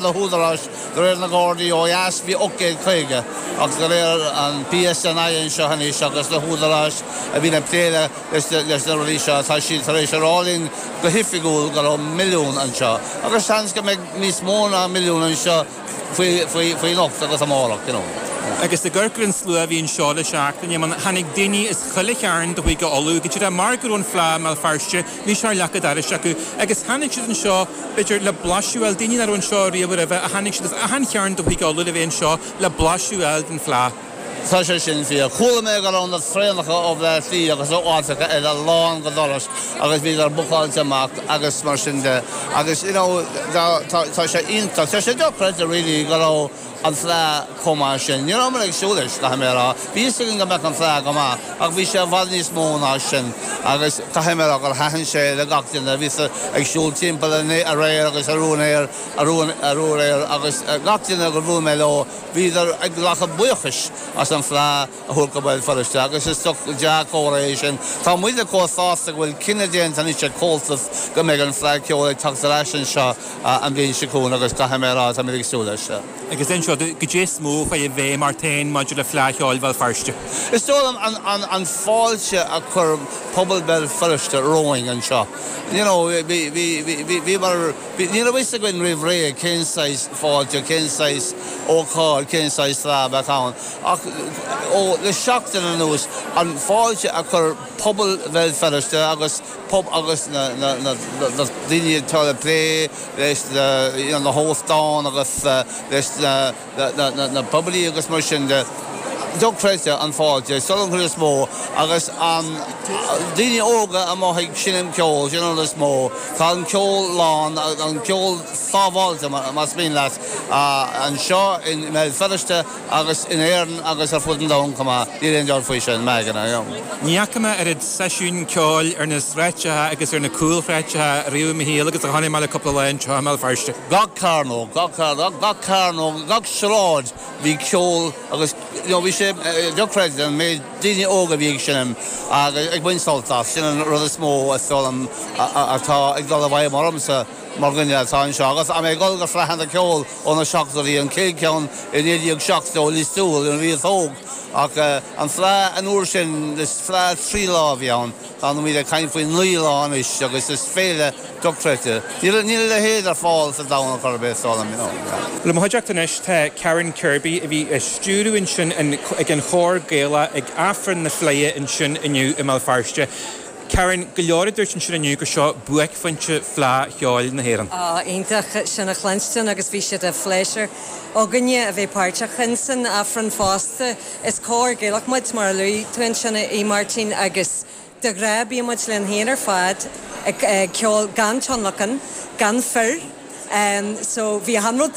na húdaráis de réir na nGardaí ó dheas bhí 850 agus de réir an PSNI anseo anois agus na húdaráis a bhíonn ag plé leis na rudaí seo tá siad tar éis a rá linn go hoifigiúil go raibh milliún anseo agus seans go mbeidh níos mó ná milliún anseo faoi anocht agus amárach, you know. Agus i gCorcaigh an slua a bhí anseo le seachtain, tháinig daoine as chuile chearn de Chúige Uladh, go díreach mar go raibh an Fleadh i mBéal Feirste, Bhí sé ar leac an dorais acu agus tháinig siad anseo b'fhéidir le blaiseadh a fháil, daoine nach raibh anseo riamh roimhe a tháinig siad as achan chearn de Chúige Uladh le bheith anseo le blaiseadh a fháil den Fleadh. Tá sé sin fíor. Chuala mé go raibh na traenacha ó Bhleá Cliath agus ó áiteacha eile lán go doras agus bhíodar bookáilte amach agus mar sin de agus you know tá sé iontach, tá sé dochreidte really go raibh an Fleadh chomh maith sin. Ní raibh mé ag súil leis, caithfidh mé a rá. Bhí fhios againn go mbeadh an Fleadh go maith, ach bhí sé i bhfad níos mó ná sin, agus caithfidh mé a rá gur thaitin sé le gach duine. Bhíos ag siúl timpeall aréir agus arú aréir, agus gach duine gur bhuail mé leo, bhíodar ag glacadh buíochais as an Fleadh. a thabhairt go Béal Feirste agus is dea-chomhartha é sin. Tá muide chomh sásta go bhfuil cinneadh déanta anois ag Comhaltas go mbeidh an Fleadh Cheoil ag teacht ar ais anseo an bhliain seo chugainn agus caithfidh mé a rá, tá muid ag súil leis. Agus ansin, cad é is mó a chuaigh i bhfeidhm ort féin maidir le Fleadh Cheoil Bhéal Feirste. Is dóigh liom an fáilte a chuir pobal Bhéal Feirste romhainn anseo, you know, bhíomar, ní raibh fhios againn roimh ré cén saghas fáilte, cén saghas ócáid, cén saghas Fleadh a bheadh ann. ach ó le seachtain anuas, an fáilte a chuir pobal Bhéal Feirste agus agus na na daoine atá le plé leis na na hóstáin agus leis na na na poiblí agus mar sin de, dochreidte an fáilte sin an chéad rud is mó agus an daoine óga amuigh ag seinm ceoil sin an rud is mó. Tá an ceol slán, an ceol sábháilte, más mian leat, anseo i mBéal Feirste. agus in Éirinn agus ar fud an domhain chomh maith, níl aon dabht faoi sin, Mag, ina iomlán. Ní fhaca mé oiread seisiúin ceoil ar na sráideacha agus ar na cúlsráideacha riamh i mo shaol agus a chonaic mé le cúpla lá anseo i mBéal Feirste. Gach cearnóg, gach cearnóg, gach cearnóg, gach sráid bhí ceol agus you know bhí sé dochreidte an méid daoine óga a bhí ag seinm agus ag baint sult as, sin an rud is mó, atá ag dul i bhfeidhm ormsa. Mar dhuine atá anseo agus mé ag dul go fleadhanna ceoil ó na seachtóidí, an chéad cheann i 1970 i Lios Tuathail nuair a bhíos óg, ach an Fleadh an uair sin, is Fleadh trí lá a bhí ann, táimid ag caint faoi naoi lá anois agus is féile dochreidte. Níl a leithéid ar fáil sa domhan ar chor ar bith, is dóigh liom. I mo chuideachta anois tá Karen Kirby a bhí ag stiúradh ansin ag an chór Gaelach ag Aifreann na Fleidhe ansin inniu i mBéal Feirste. Karen, Go leor a dúirt ansin inniu gur seo buaicphointe Fleadh Cheoil na hÉireann. Ah, iontach sin a chluinstin agus bhí sé de phléisiúr againne a bheith páirteach in san Aifreann fosta. Is cór Gaelach muid, mar a luaigh tú ansin a Mháirtín, agus de ghnáth bíonn muid linn féin ar fad ag ceol gan tionlacan, gan fir, so bhí achan rud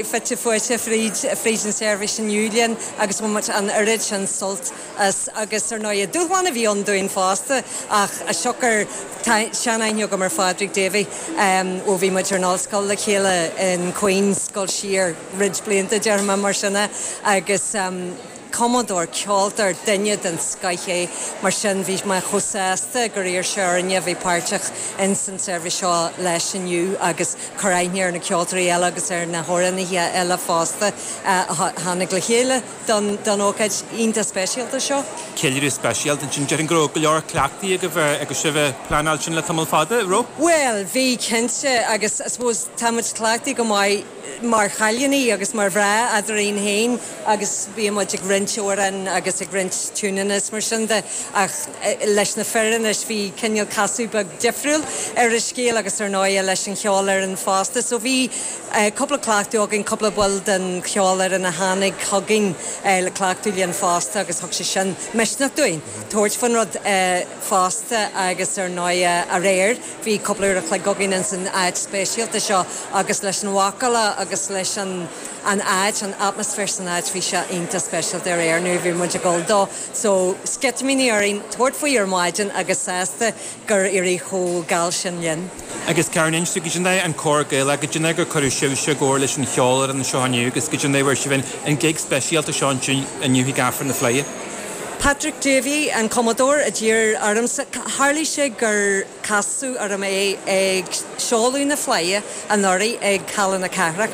fite fuaite fríd an tseirbhís inniu linn agus bhain muid an oiread sin sult as agus ar ndóighe dúshlán a bhí ann dúinn fosta ach siocair tá seanaithne agam ar Phádraig Davey ó bhí muid ar an ollscoil le chéile in Queen's dul siar roinnt blianta déarfainn, mar sin é agus Cumadóir, ceoltóir, duine den scoith é, mar sin bhí mé chomh sásta gur iarr sé orainne a bheith páirteach ins an tseirbhís seo leis inniu agus cur aithne ar na ceoltóirí eile agus ar na hamhránaithe eile fosta a tháinig le chéile don ócáid iontach speisialta seo. Ceiliúradh speisialta ansin. Déarfainn go raibh go leor cleachtaí agaibh, ag sibh, pleanáil sin le tamall fada, an raibh? Bhuel, bhí cinnte, agus I suppose tá muid cleachtaithe go maith. mar chailíní agus mar mhná eadrainn féin agus bíonn muid ag roinnt amhrán agus ag roinnt tiúineanna is mar sin de ach leis na fir anois bhí cineal casadh beag difriúil ar an scéal agus ar ndóighe leis an cheolfhoireann fosta so bhí cúpla cleachtadh againn, cúpla ball den cheolfhoireann a tháinig chugainn le cleachtadh linn fosta agus thug sé sin misneach dúinn tabhairt faoin rud fosta agus ar ndóighe aréir. Bhí cúpla uair a chloig againn ins an áit speisialta seo agus leis an mhacalla agus leis an an áit, an atmaisféar san áit, bhí sé iontach speisialta aréir nuair a bhí muid ag dul dó. So, sceitimíní orainn tabhairt faoi ar maidin agus sásta gur éirigh chomh geal sin linn. Agus Karen, inis dúinn, cad é an cór Gaelach, cad é mar cuireadh sibhse i gcomhar leis an cheolfhoireann anseo inniu agus cad é mar fuair sibh an gig speisialta seo anseo inniu chuig Aifreann na Fleidhe? Patrick Davey, an cumadóir a d'iarr ormsa, tharlaigh sé gur casadh orm é ag seoladh na Fleidhe anuraidh ag Halla na Cathrach.